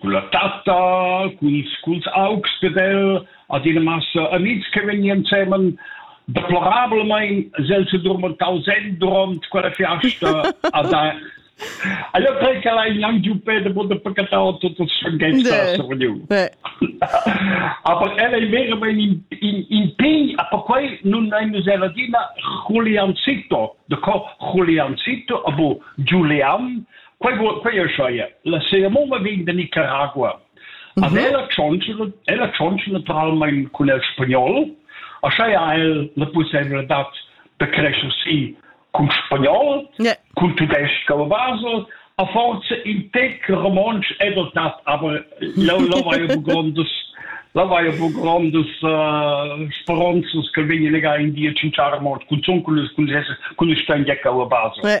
culla tatta, culs, culs augs ded el, adina massa amics che vegnan semen deplorabelmain sel se durmentau sen durant quella fiasta a da Allora credo che l'hai anche giù per de bude pecatau tutto sanghesta sorniu. Aber ella è vera in in in pign, aber quei non è nus ladina Juliancito, de co Juliancito, abo Giulian, Quei guad quei ei La cerimonia vegn da Nicaragua. Mm -hmm. ella tschontschla ella tschontschla naturalmein cun el spagnol, aschia ha el la possibilitad da crescer si cun spagnol, yeah. cun tudesc a basel, a forza in tec romontsch è dotat, aber là va ja grondas là va ja grondas uh, speronzas che vegnan legar in dir cinciare mort cun zun cun cun cun stangiacca a basel. Yeah.